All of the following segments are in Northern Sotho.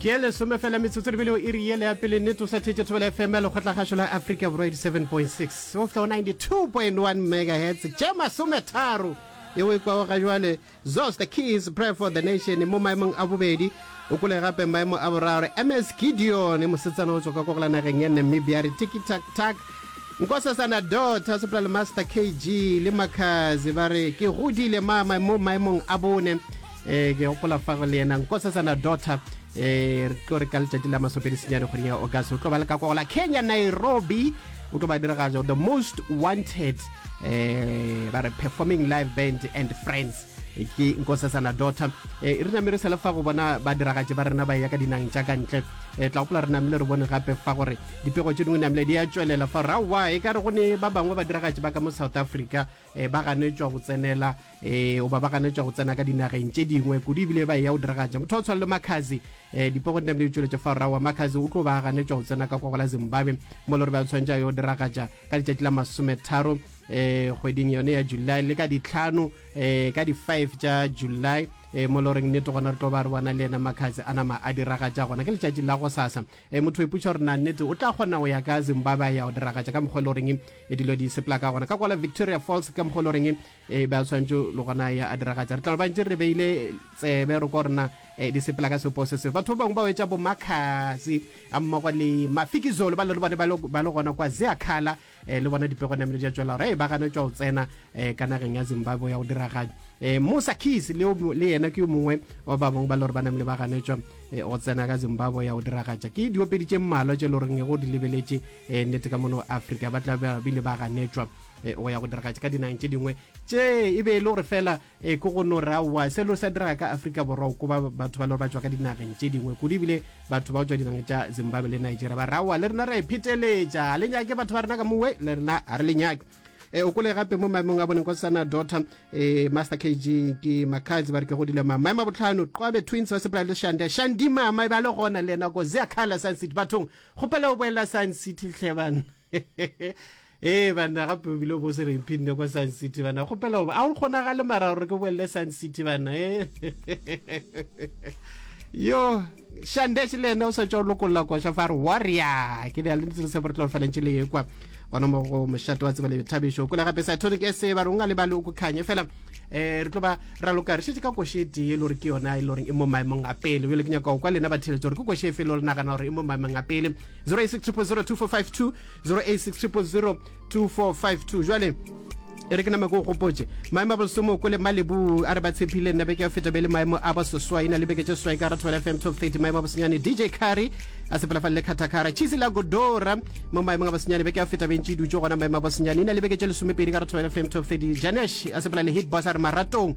ke e lesome fela metsotso lebele o iri yele ya pele nnete o sa thetse thobela fm ya lekgotlagašo la africa borwa 87.6 o flo 92.1 megahertz tše masometharo yeo e kwago ga jwale zos the keys prayer for the nation mo maemong a bobedi o kole gape maemo a boraro ms gideon mosetsana o tswa ka kogela nageng ya namibia re tikitaktak nkosasana dota soprale master kg le makazi ba re ke godile mama mo maemong a bone um ke gopola fa go le yena nkosetsana daughter um re tlo re ka letšatši la masopedi senyane kgweding ya august o tlo ba le ka kogola kenya nairobi o tlo ba diragatso the most wanted um ba re performing live band and friends ke nkosetsana daughter um re name re sele fa go bona ba diragatše ba rena ba ya ka dinang tša ka ntle um tla gopola re namile re bone gape fa gore dipego tše dingwe namile di ya tšwelela fa gore aowa e ka re go ne ba bangwe ba diragatše ba ka mo south africa e, ba ganetšwa go tsenela e, oba ba ganetšwa go tsena ka dinageng tše dingwe kudu ebile ba e ya go diragatša motho wa tshwana le makazi e, dipogo di namile tšweletša fa rrago wa makazi o tlo ba ganetšwa go tsena ka kwa go la zimbabwe mo le gore ba tshwanetša yo diragatša ka letšatši la masometharo um e, kgweding yone ya july le ka ditlhano um ka di-five tša july um mo le goreng nnete gona re tlo ba re bona le ena makazi a nama a diragatša gona ke letšatši la go sasa E, motho o ipotša gore na nnete o tla kgona go ya ka zimbabwe a ya go diragatša ka mokgwa e le goreng e dilo di sepela ka gona ka kwala victoria falls ka mokgwa e le goreng e ba tshwanetse le gona ya a diragatša re tla ba ntse re beile tsebe re kwa rena e, di sepela ka sepo se seo batho ba bangwe ba etša bomakgasi ga mmogo le mafikizolo ba le bone ba le gona kwa zeakhala eh, le bona dipego namele ja tšwela gore e ba gana tšwa o tsena eh, ka nageng ya zimbabwe ya go diraganya eh, musa keys le, le yena ke yo mongwe wa ba bangwe ba le gore ba namele ba ganetšwa eh, go tsena ka zimbabwe ya go diragatša ke diopedi tše mmalwa tše le goreng e go di lebeletše eh, nnete ka mono afrika ba tla bile ba ganetšwa eh, go ya go diragatša ka dinageng tše dingwe tše e be e le gore fela Ee, ke go no re aowa, se lo sa diraga ka Afrika Borwa o koba batho ba le gore ba tšwa ka dinageng tše dingwe kudu ebile batho ba o tšwa dinageng tša Zimbabwe le Nigeria ba re aowa le rena ra e pheteletša ga le nyake batho ba rena ka mowe le rena ga re le nyake e eh, o kole gape mo maemong a boneng kwa sana daughter e master kg ke makadzi ba re ke godile ma maemo a botlhano qwabe twins ba sepela le shande shandi mama e ba le gona le nako zea khala science city bathong gopela o boela science city tlhebana ee banna gape o bile bo se re mphinne kwa sun city banna kgopela goba a o kgonagale mara gore ke bolele sun city banna e yo shandese le ena o sa tswa o lokolola kwa shafa re warrior ke ne a le ntse re se boretlo falentše le ekwa gona mo go mošate wa tseba le thabišo kole gape sa tonic se ba rongwa le ba le o kukhanye fela eh re tlo ba ra loka re shetse ka koshe tee e le gore ke yona e le gore e mo maemong a pele bjale ke nyaka go kwa lena ba theletso gore ke koshe efe e le gore nagana gore e mo maemong a pele 0860002452 jwale e re ke nama ke o gopotse maemo a bosomo ko le malebu a re ba tshepile nna beke ya feta be le maemo a basoswa e na le beke tše swai ka ratho fm top 30 maemo a bosenyane dj carry a sepela fa le khathakara chisi la godora mo maemong a bosenyane beke ya feta bentši dutse gona maemo a bosenyane e na le beke tše lesomepedi ka ratho fm top 30 janesh a sepela le hit boss a re maratong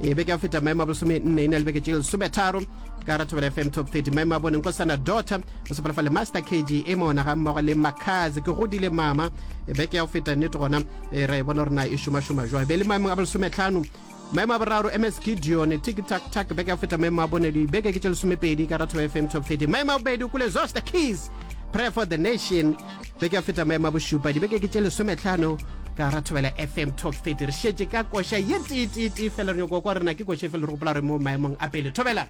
e beke ya go feta maemo a bolesome nne e na le beke tše lesometharo ka ra thobela fm top 30 maemo a boneng kosana dota o sepela fa le master kg e mona ga mmogo le makazi ke godile mama e beke ya go feta nnete gona e ra e bona gore na e šomašoma jwa be le maemong a bolesometlhano maemo a boraro ms gideon tiktak tak beke ya go feta maemo a bone dibeke ke tše lesomepedi ka ra thobela fm top 30 maemo a bobedi o kule zosta keys prayer for the nation ge ke a feta maema bošupa dibeke ke tše lesometlhano ka ra thobela fm top 30 re šetše ka koša ye teeteetee fela re nyoko kwa rena ke koša efe le re gopola re mo maemong a pele thobela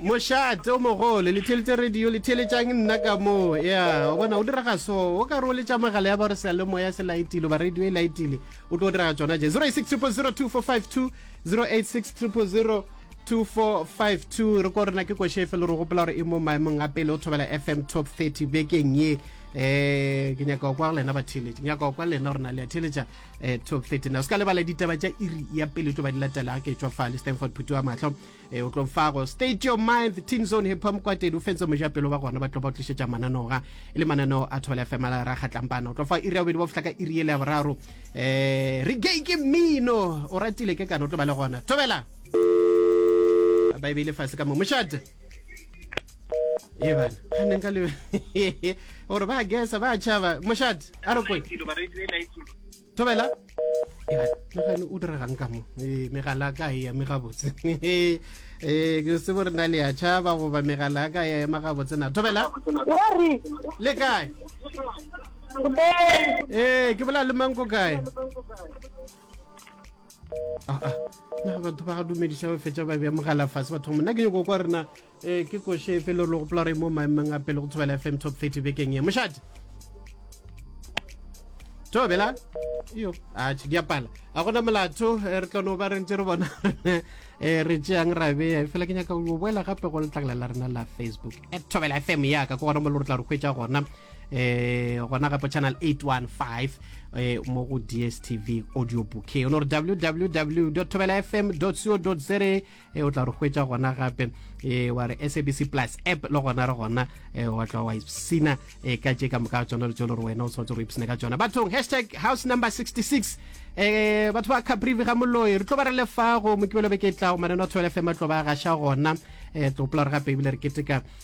mošate o mogolo le theletše radio le theletšang nna ka moo ya o bona o dira ga so o ka re o letša magala ya ba re sa le moya se laetile ba radio e laetile o tlo dira ga tsona je 086 000 245 2 086 000 2452 re ko rena ke kwešhe efe le re gopola gore e mo maemong a pele o thobela fm top 30 bekeng ye um ke nyaka kwa lena ba theletše nyaka kwa lena gore na le a theletša um top 30 na o se ka lebala ditaba tša iri ya pele tlo ba di latela ke tswa fa le stanford phuti wa matlho um o tlo fago state your mind team zone hip hop kwatedi o fentse mojapelo ba gona ba tlo ba tlišetša mananoga e le mananeo a thobela fm a ra kgatlampana o tlo fa iri ya bobedi ba fihla ka iri ele ya boraro um re gay ke mmino o ratile ke kana o tlo ba le gona thobela ba e beile fase ka mo mošate e bana ga neng ka le gore ba gesa ba tšhaba mošate a re kwe thobela megane o diregang ka mo e, megala ka e eme gabotse e, ke se bo re na le ya tšhaba goba megala ka ya ema gabotse na thobela le kae ee ke bola le manko kae ah, ah. na batho ba dumediša ba fetša ba bea mogala fase batho mona ke nyoko kwa rena um ke koše efe le gore le gopola gore mo maemeng a pele go tshobela fm top 30 bekeng e mošate tobela yo a tšhe diapala a gona molato eh, re tlono ba rentse re bona um re tšeang ra beya fela ke nyaka go boela gape go letlakala la rena la facebook at tobela fm yaka ke gona mo le gore tla re kgwetsa gona eh gona gape channel 815 eh mo go DSTV audio bouquet o no re www.thobelafm.co.za eh o tla re hwetša gona gape eh wa re SABC Plus app le gona re gona eh wa tla wa ipsina eh ka tše ka moka tsona le tsone re wena o tshwanetse go ipsina ka tsona bathong hashtag house number 66 eh batho ba Caprivi ga moloi re tlo ba re lefa go mokibelo be ke tla o maneno a 12 FM tlo ba gasha gona eh tlo pula re gape ebile re keteka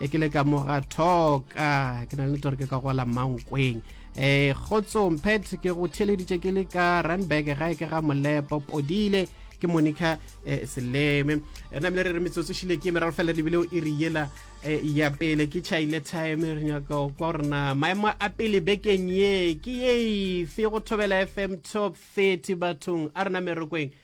e ke le ka mo ga thoka ke na le tore ke ka gola mankweng um kgotsong pet ke go theleditše ke le ka runberg gae ke ga molepo podile ke monica eh, seleme re namile re re metsotso šile ke meraro fela lebile o iri yela eh, ya pele ke chaile time re nyaka kwa gorena maemo a pele bekeng ye ke ye fe go thobela fm top 30 bathong a rena merokweng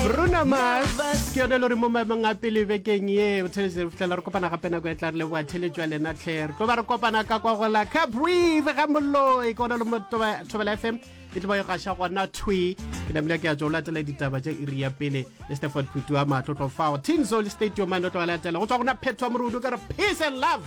Bruno Mars ke yone le gore mo maemong a pele bekeng ye o theletše fitlhela re kopana gape nako e tla re leboa theletšo ya lena tlhe re tlo ba re kopana ka kwa gola ka breathe ga moloi ke gona le mo thobela fm e tlo ba yo gaša gona twi ke namile ke ya tso latela ditaba tša iri ya pele le steford phutu wa matlotlo fao tinzol stadium a no tlo latela go tswa gona phetho morudu ka re peace and love